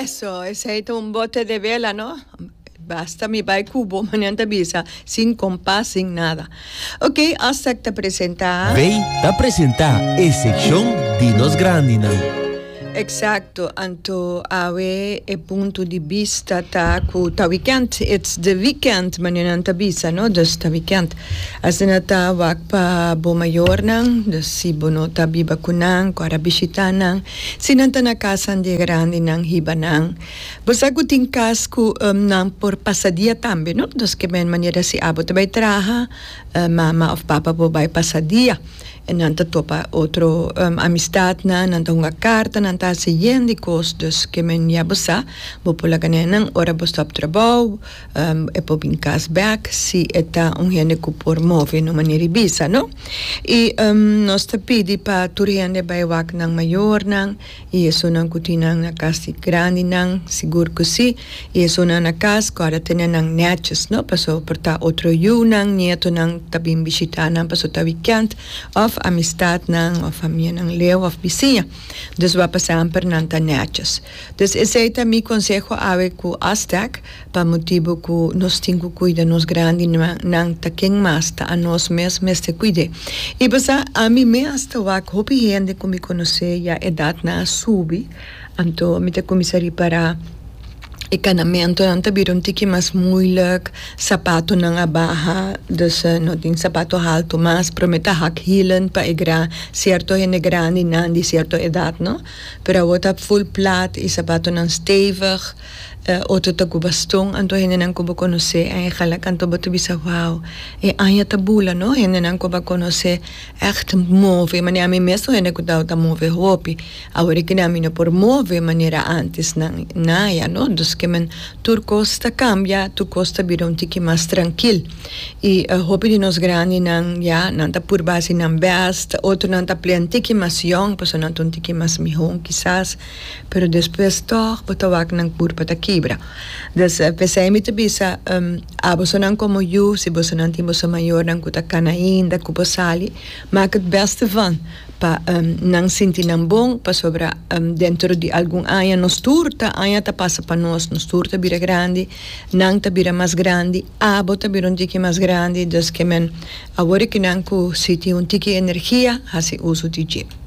Eso, esei ta un bote de vela, no? Basta mi bai kubo, manan ta bisa, sin kompas, sin nada. Ok, Aztec ta presenta. Bay ta presenta e sekshon di nos grandinan. Eksakto, anto awe e punto di bista ta ku ta wikènt, it's the weekend, manan ta bisa, no? Dus ta wikènt. Asina ta, wak pa bo mayornan, si bo no ta biba ku nan ku a ta bishitá nan, si nan ta na kasanan di e grandinan hiba nan. Bo sa ku tin kas ku nan por pasa dia tambe, no? Dus kemen manera si abo ta bai traha, mama òf papa bo bai pasa dia. Nan ta topa otro amistatnan, nan ta hunga karta, nan ta hasi yen di kos. Dus kemen ya bo sa, bo por laga nenan ora bo sta op trabou. E por bin cas bek si e ta un hende cu por move en un manera di bisa, no? Y nos ta pidi pa tur hende bay wak nan mayornan y esunnan cu tin nan na cas di grandinan, sigur cu si, y esunnan na cas cu a ta tene nan netjes, no? Pasobra por ta otro yunan, nietonan ta bin bishita nan pasobra ta wikend, of amistadnan, of famianan leu, of bisiña. Dus wak pa semper nan ta netjes. Dus esey ta mi conseho awe cu Aztec. Pa motibu ku nos tin ku kuida nos grandinan ta ken mas ta anos mes mester kuid'é. I pasá ami mes ta wak hopi hende ku mi konos'é ya edatnan a subi, anto mi ta kuminsá ripará e kanamentunan ta bira un tiki mas muilik, sapatonan a baha, dus no tin sapato haltu mas, pero mi ta hak hielen pa e gran sierto hende grandinan di sierto edat no, pero awor ta ful plat i sapatonan stevig. E otro ta cu baston, anto hendenan cu bo conoce en e hala canto bo ta bisa, Wow, e aña ta bula no! Hendenan cu bo a conoce echt move manera ami mes ta hende cu tawata ta move hopi, awor kende ami no por move manera antes nan, naya no. Dus ke men tur cos ta cambia, tur cos ta bira un tiki mas trankil. Y hopi di nos grandinan ya nan ta purba haci nan best, otronan ta plea un tiki mas yong pasobra nan ta un tiki mas mihon kisas. Pero despues tog bo ta wak nan kurpa ta kibra. Dus p'esei mi ta bisa, a bosonan komo yu, si bosonan tin boso mayornan ku ta kana ainda ku bo sali, mak het bèste van pa nan sinti nan bon, pasobra dentro di algun aña nos tur ta aña ta pasa pa nos, nos tur ta bira grandi, nan ta bira mas grandi, abo ta bira un tiki mas grandi, dus ke men a wor e kinan ku si tin un tiki energia hasi uso di dje.